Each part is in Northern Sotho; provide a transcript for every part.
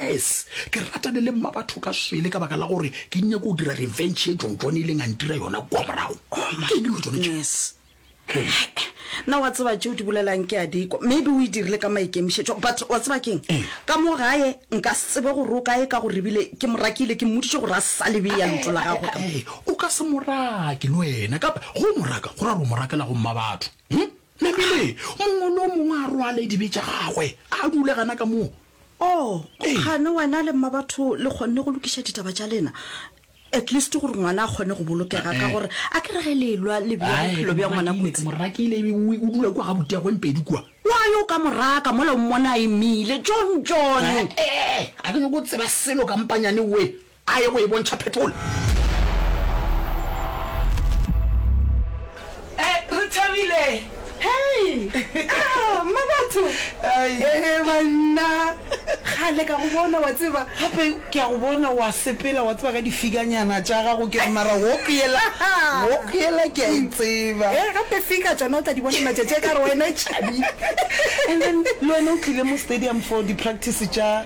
Yes, ke ratane le mmabatho ka swele ka baka la gore ke nyako go dira revenge e jonjone ileng a ntira yona kwa morago ke eng dilo tsone tše Yes. na wa tseba tšeo di bolelang ke a dikwa maybe o e dirile ka maikemišetšo but wa tseba keng ka mo gae nka se tsebe gore o kae ka gore ebile ke morakile ke mmoditše gore a sa lebe ya lotho la gagwe ka mo- Ee, o ka se morake le wena kapa go moraka go ra gore o morakela go mma batho Hm? namele mongwe le o mongwe a rwale dibe tša gagwe a dule gana ka moo Oh, o kgane wena le mmabatho le kgonne go lokiša ditaba tša lena at least gore ngwana a kgone go bolokega ka gore a ke re ge le elwa le bea bophelo bja ngwana kotsi morakile ebengwe o dula kwa ga boteagweng pedi kua wa yo ka moraka mola o mmona a emile john john a ke nyoko tseba selo kampanyane we A ye go e bontšha petrol. Re thabile. Hei! Ahh, mma batho! Hehe, banna! Kgale ka go bona, wa tseba. Gape ke a go bona o a sepela, wa tseba, ka difiganyana tša gago. Ke re, mara walk yela, walk yela ke a e tseba. Hee, gape fika tšona o tla di bona matšatši a ka gore wena e tšhabile. And then le wena o tlile mo stadium for di-practice tša.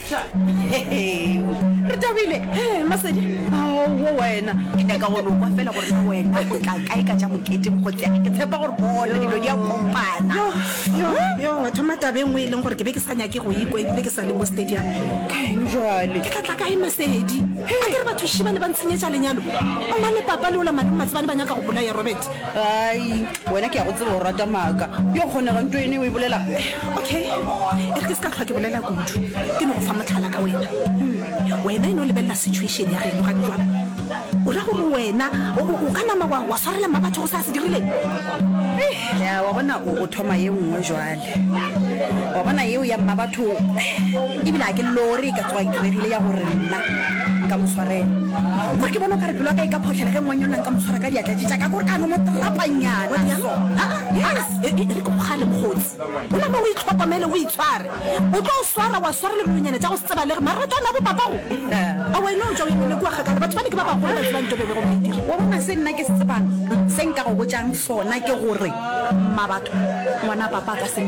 Tla, re tabile. He, Masedi, ao, wo wena. Ke nyaka go no kwa fela gore na wena o tla kae ka tša mokete mokgotsea. Ke tshepa gore bona dilo di a kopana. Yo, yo, yo, wa thoma taba e nngwe e leng gore ke be ke sa nyake go ikwa ebile ke sa le mo stadium. Kaeng jwale? Ke tla tla kae Masedi? A ke re batho šiba le ba ntshenyetša lenyalo. O na le papa le ola malome Matsebane ba nyaka go bolaya Robert. Ai, Wena ke a go tseba o rata maaka. Yo kgonega nto ene o e bolela. Okay, e re ke se ka hlwa ke bolela kudu. Ke no go fa mohlala ka wena. Umm, wena e no lebelela situation ya geno gane jwalo. O ra gore wena o, o, o ka nama wa, wa swarela mma batho go sa se dirileng? Eih, ya wa bona o, o thoma ye nngwe jwale. Wa bona yeo ya mmabatho, ebile ga ke lore e ka tsoga e diregile ya gore nna nka mo swarela. Kore ke bona o ka re pelo ya ka e ka photlhela ge ngwanyonna nka mo tshwara ka diatla tše tša ka, kore ka no mo trapanyana so. Re ko bogale mokgotsi, gola mo o itlhokomele, o itshware. O tlo o swara, wa swara le dinonyana tša go se tsebalege, mara o tla nna bopapago. Aowa e no tšwa o emele kua kgakala, batho bale ke ba bagolo ba tsebang tšo be be go maitiro. Wa bona se nna. Ke se tsebang, se nka go botšang sona ke gore, Mmabatho, ngwana papa a ka se.